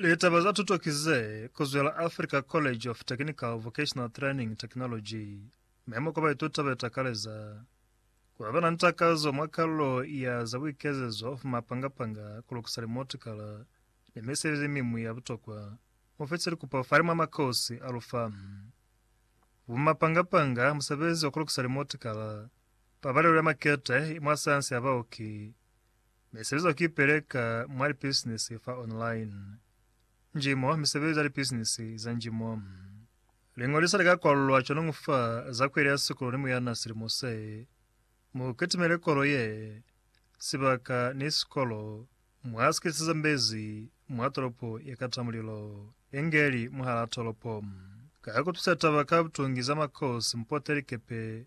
Litaba za tuto ki ze kuzwela Africa College of Technical Vocational Training Technology. Memo kwa baituta be takaleza ku ba na ni takazo mwa kalulo ya za buikezezo fa mapanga-panga, ku lukisa limotikala, ni misebezi miñwi ya butokwa. Mu fitise likupo fani mwa makosi a lu fañi, Bo mapanga-panga, musebezi wa ku lukisa limotikala, pabalelo ya makete mwa sayansi ya baoki, Mi sezo ki peleka mwa lipisinisi fa online. Njimo, misebezi ya lipisinisi za njimo. Liñoliso li ka kwalulwa cwanoñu fa za kweli ya sikolo ni muyana silimo se. Mu kitimele kolo ye, sibaka, ni sikolo mwa si kisiza mbezi mwa tolopo ye kata mulilo, engeli mwahalaa tolopo. Ka ku tusa taba ka butungi za makosi, mu pote likepe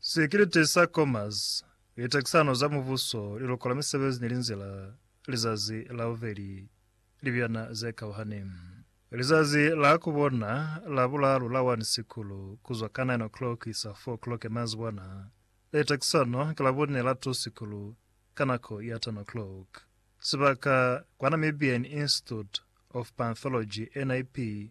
Sekirite sa Commerce, Litakisano za Mubuso, Liluko la Misebezi ni Linzila, Lizazi la Bubeli, Libiyana ze Kauhani. Lizazi la ku bona la bulaalu la 1 Sikulu, ku zwa ka 9 o'clock kuisa 4 o'clock ya mazibwana. Litakisano ki la bune la 2 Sikulu, ka nako ya 10 o'clock. Sibaka, kwa Namibian Institute of Panthology, NIP,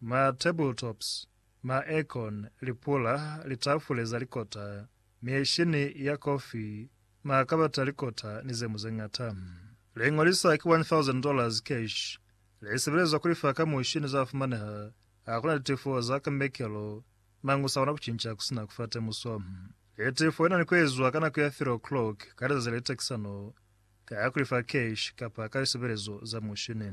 Ma tabletops, ma aircon, lipula, litafule za likota, mieshini ya kofi, makabati a likota ni zeñwi zeñata. Liñolisa ki one thousand dollars cash. Lisebelezwa kulifa ka mushini za fumaneha hakuna litifo za ka mekelo, mañi usakona kucinca kusina kufa temuso. Litifo linani kuezwa ka nako ya three o'clock ka lizazi la litekisano, ka kulifa cash kapa ka lisebelezo za mushini.